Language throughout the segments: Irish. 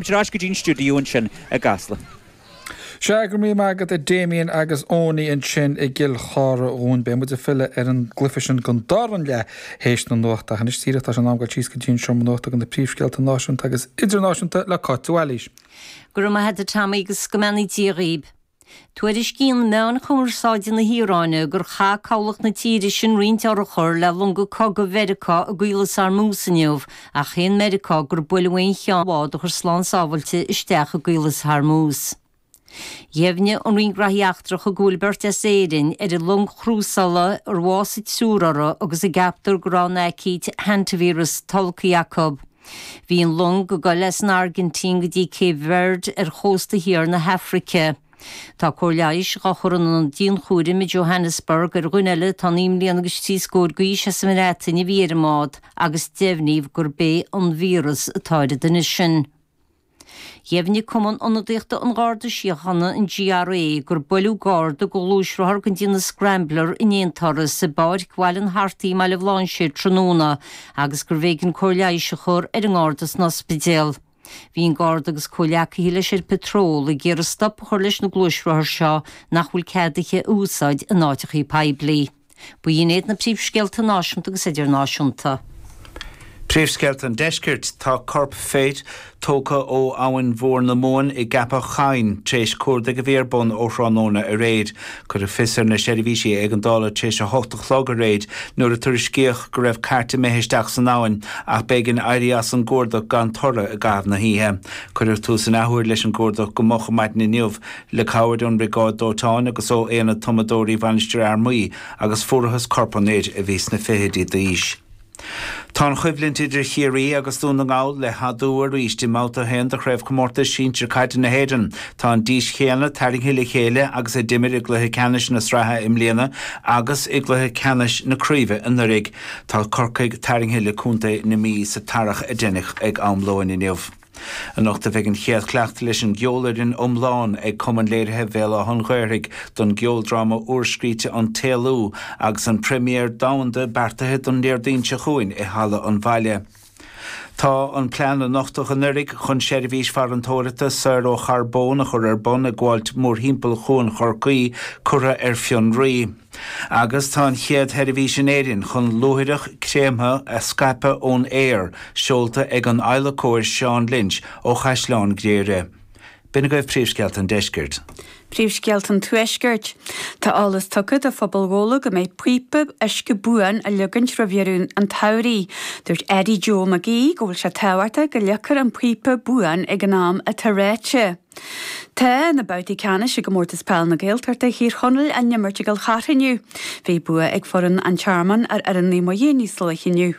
Ar ais go dtí an stiúideo ansin i gCasla. Sea, go raibh maith agat a Damien agus Eoiní ansin i gCill Chartha dhúinn. Beidh muid ag filleadh ar an gcluiche sin don dara leath théis na nuachta, ach anois díreach tá sé in am dul síos go dtí an seomra nuachta agus na príomhscéalta náisiúnta agus idirnáisiúnta le Cáit de Bhailís. Go raibh maith agat a Tommy agus go mbeannaí Dia dhaoib. Tuairiscíonn meáin chumarsáide na hIaráine gur chaith cabhlach na tíre sin roinnt urchar le longa cogaidh Mheiriceá i gCaolas Ormuz inniu ach shéan Meiriceá gur buaileadh aon cheann dá bháid a chuaigh slán sábhailte isteach i gCaolas Hormuz. Dheimhnigh an Roinn Graithí Eachtracha go bhfuil beirt as Éirinn ar an long chrúsála ar bhásaigh triúr uirthi agus a gceaptar go raibh an aicíd, hantavirus, tolgtha acu. Bhí an long ag dul as an Airgintín go dtí Cape Verde ar chósta thiar na hAfraice. Tá cóir leighis dhá chur in aonad dianchúraim i Johannesburg ar dhuine eile atá naoi mbliana agus trí scór d'aois as an mBreatain a bhí ar an mbád agus deimhníodh gurb é an víreas atá ar an duine sin. Dheimhnigh Cumann Ionadaíochta an Gharda Síochána, an GRA, gur buaileadh Garda le gluaisrothar dhen chineál Scrambler in aonturas i bPáirc Bhaile an Artaigh i mBaile Bhlainséir tráthnóna agus gurbh éigean cóir leighis a chur ar an nGarda san ospidéal. Bhí an Garda agus comhleacaithe leis ar patról ag iarraidh stop a chur leis na gluaisrothair seo nach bhfuil cead iad a úsáid in áiteachaí poiblí. Ba shin iad na príomhscéalta náisiúnta agus idirnáisiúnta. Príomhscéalta an Deiscirt, Tá corp fir tógtha ó Abhainn Mhór na Mumhan i gCeapach Choinn tar éis cuardaigh a bhí ar bun ó thráthnóna aréir. Cuireadh fios ar na seirbhísí éigeandála tar éis a hocht a chlog aréir nuair a tuairiscíodh go raibh cairt imithe isteach san abhainn ach b'éigean éirí as an gcuardach gan toradh i gcaitheamh na hoíche. Cuireadh tús in athuair leis an gcuardach go moch maidin inniu. Le cabhair ón Bhriogáid Dóiteáin agus ó Aonad Tumadóirí Mhainistir Fhear Maí agus fuarathas corp an fhir, a bhí sna fichidí d'aois. Tá an choimhlint idir Ciarraí agus Dún na nGall le hadú arís. I mbabhta a haon de Chraobhchomórtas Sinsir Caide na hÉireann, tá an dís chéanna tarraingthe le chéile agus a d'imir i gcluiche ceannais na sraithe i mbliana agus i gcluiche ceannais na craoibhe anuraidh. Tá Corcaigh tarraingthe le contae na Mí sa tarrac a deineadh ag am lóin inniu. Anocht a bheidh an chéad chleachtadh leis an gceolfhoireann iomlán ag Cumann Léirithe Bhéal Átha'n Ghaorthaidh don gceoldráma úrscríte An tÉalú agus an première domhanda beartaithe don Déardaoin seo chugainn i Halla an Bhaile. Tá an plean a nochtadh anuraidh chun seirbhís farantóireachta saor ó charbón a chur ar bun ag gabháilt mórthimpeall Chuan Chorcaí curtha ar fionnraí. Agus tá an chéad sheirbhís in Éirinn chun luaithreach créamtha a scaipeadh ón aer seolta ag an adhlacóir Seán Lynch ó Chaisleán Ghriaire. B'in agaibh príomhscéalta an deiscirt. Príomhscéalta an tuaiscirt. Tá eolas tugtha do phobal Ghabhla go mbeidh píopa uisce buan á ligint roimh dheireadh an tsamhraidh. Dúirt Eddie Joe Mac Aoidh go bhfuil sé tábhachtach go ligfear an píopa buan ag an am atá ráite. Tá na babhtaí ceannais i gComórtas Peil na Gaeltachta Thír Chonaill á n-imirt i gCill Chartha inniu. Bhí bua ag foireann An Tearmainn ar fhoireann Naomh Muire níos luaithe inniu.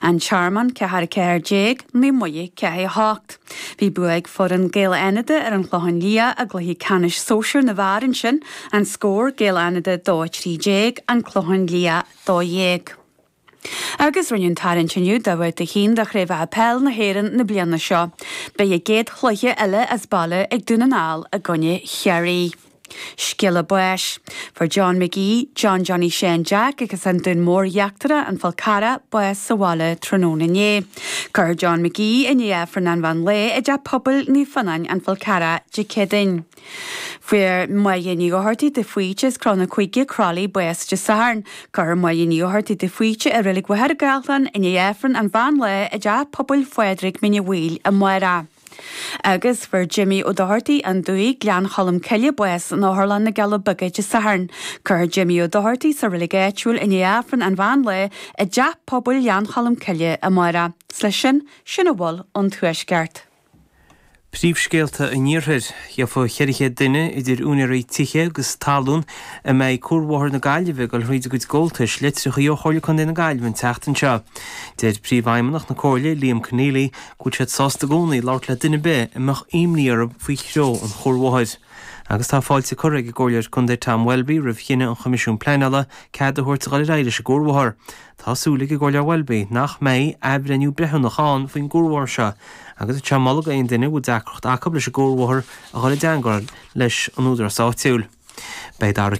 An Tearmann, ceathair a ceathair déag, Naomh Muire, ceathair a hocht. Bhí bua ag foireann Gaeil Fhánada ar an Chlochán Liath i gcluiche ceannais sóisear na bhfear ansin. An scór, Gaeil Fhánada 2 13, An Clochán Liath 12. Agus rinneadh an tarraingt inniu do Bhabhta 1 de Chraobhacha Peil na hÉireann na bliana seo. Beidh a gcéad chluiche eile as baile ag Dún na nGall i gcoinne Chiarraí. Scéala báis. Fuair John McGee, John Johnny Sheáin Jeaic agus an Dún Mór Íochtarach, An Fál Carrach, bás sa bhaile tráthnóna inné. Cuirfear John McGee, i ndiaidh Aifreann an mheán lae, i dTeach Pobail Naomh Fionáin, An Fál Carrach, Dé Céadaoin. Fuair Máire Ní Dhochartaigh de Faoite as Cró na gCuigeadh, Croithlí, bás Dé Sathairn. Cuirfear Máire Ní Dhochartaigh de Faoite i Reilig Mhachaire Gathlán i ndiaidh Aifreann an mheán lae i dTeach Pobail Phádraig, Mín Uí Bhaoil, amárach. Agus fuair Jimmy Ó Dochartaigh, An Dumhaigh, Gleann Cholm Cille, bás in Otharlann na gCealla Beaga Dé Sathairn. Cuirfear Jimmy Ó Dochartaigh sa reilig áitiúil i ndiaidh Aifreann an mheán lae i dTeach Pobail Ghleann Cholm Cille amárach. Is leis sin, sin a bhfuil ón Tuaisceart. Príomhscéalta an Iarthair, Gheobhaidh 400 duine, idir úinéirí tithe agus talún, a mbeidh Cuarbhóthar na Gaillimhe ag dul thríd a gcuid gabháltais, litreacha ó Chomhairle Contae na Gaillimhe an tseachtain seo. Deir Príomhfheidhmeannach na Comhairle, Liam Conneely, go bhfuil siad sásta i gcónaí labhairt le duine ar bith a mbeadh imní orthu faoi threo an chuarbhóthair. Agus tá fáilte curtha ag an gComhairleoir Contae Tom Welby roimh chinneadh an Choimisiúin Pleanála cead a thabhairt a dhul ar aghaidh leis an gcuarbhóthar Tá súil ag an gComhairleoir Welby nach mbeidh athbhreithniú breithiúnach ann faoin gcuarbhóthar seo agus tá sé ag moladh d'aon duine a bhfuil deacracht acu leis an gcuarbhóthar a dhul i dteangmháil leis an údarás áitiúil. Beidh Dara.